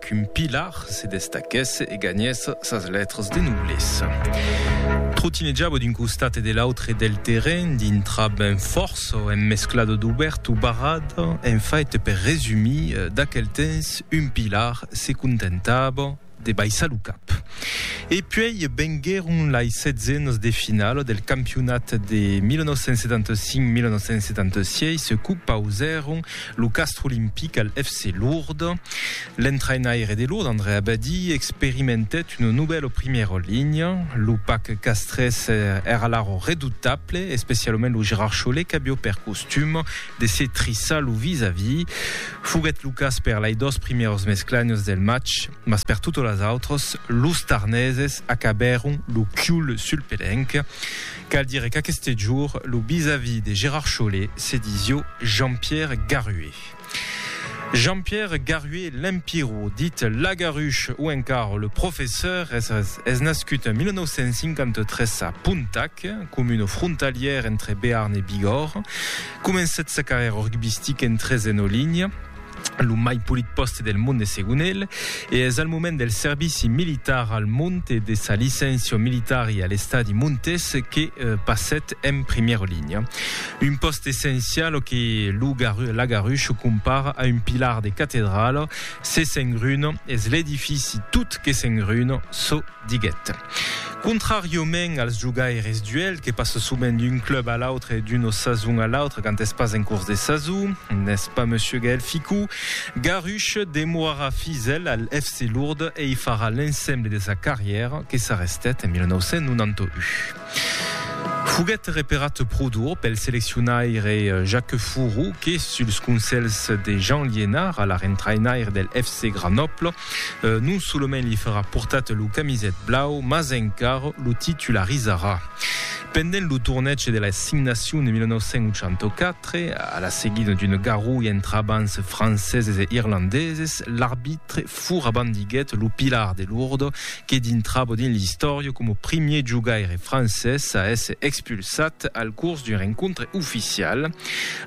Qu'un pilar se destaquèsse e ganhèsse sas lètras de noblesa. Trotinejava d'un costat e de l'autre del terrenh, dintra ben fòrça, emmesclada d'obèrt o barrat, en fait, per resumir, d'aquel temps, un pilar se contentava de baissar lo cap. E puèi venguèron lai setzenas de finala del campionat de 1975-1976 que pausèron Lo Castre Olympique al FC Lourdes. L'entrainaire de Lourdes, André Abadie, experimentèt una novèla primièra linha. Lo pac castrés èra laro redutable, especialament lo Gérard Chollet qu'avió per costum de se trissar lo vis-à-vis. Foguèt lo cas per lei dos primièros mesclagnos del match, mas per totas las autras, los Tarneses acabèron lo chiul sul pelenc. Cal dire qu'aqueste jour, lo bisavi de Gérard Chollet se disió Jean-Pierre Garué. Jean-Pierre Garué Lempirro, dit Lagarush o encara le Professeur, es es nascut en 1953 a Pontac, comuna frontalièra entre Bearn e Bigòrre. Comencèt sa carrièra rugbistica en tresena linha. lo mai polit pòste del monde segon el, e es al moment del servici militar al Mont e de sa licencion militari a l'estadi Montes que passèt en primièra linha. Un pòste essencial que lo Lagarush compara a un pilar de catedrala, se s'engruna es l'edifici tot que s'engruna, çò diguèt. Contràriaument als jogaires d'uèlh que passe sovent d'un club a l'autre e d'una sason a l'autra quand es pas en cors de sason, n'es pas monsieur Gaël Ficou. Garuche demorarà fidèl al FC Lourdes e i farà l'ensemble de sa carrièra que s'arrestèt en 1991. Foguèt reparat pro dur pel seleccionaire Jacques Fourou que, suls conselhs de Jean Liénard, alara entrainaire del FC Grenoble, Non solament li farà portat lo camiset blau, mas encar lo titularizarà. Pendent lo tornètge de l'Assignacion de 1984, a la seguida d'una garrulha entre abans franceses e irlandeses, l'arbitre fura bandiguèt lo Pilar de Lourdes, que dintrava dins l'istòria coma primier jogaire francés a èsser expulsat al cors d'un rencontre oficial.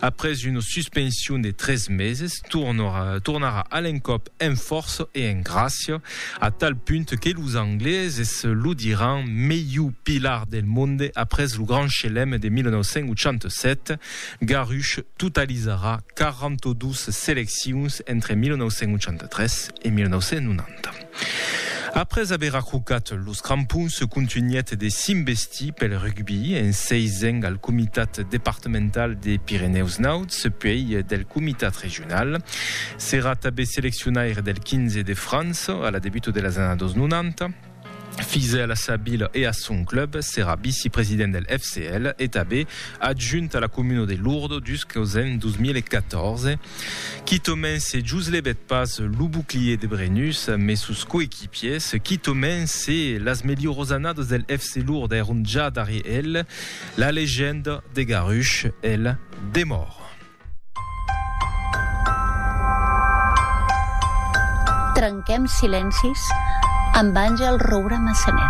Après una suspension de tres meses, tornarà a l'encòp en fòrça e en gràcia, a tal punt que los angleses lo diràn melhor pilar del monde après lo Grand Chelem de 1987. Garruche totalizarà 42 seleccions entre 1983 e 1990. Après aver ajucat los crampons, contunhèt de s'investir pel rugbi, en seisent al comitat departamental de Pirenèus Nauds, puèi del comitat regional. S'èra tanben seleccionaire del 15 de França a la debuta de las annadas 90. Fidèl a sa vila e a son club, s'èra vicepresident del FCL e tanben adjunt a la comuna de Lourdes dus qu'aus en 2014. Quitament se jos levèt pas lo bouclier de Brennus, mes sos coequipiers, quitament se las melhorós annadas del FC Lourdes èron ja darrier el, la legenda de Garush, el, demòra. Trenquem silencis amb Àngel Roura Massanet.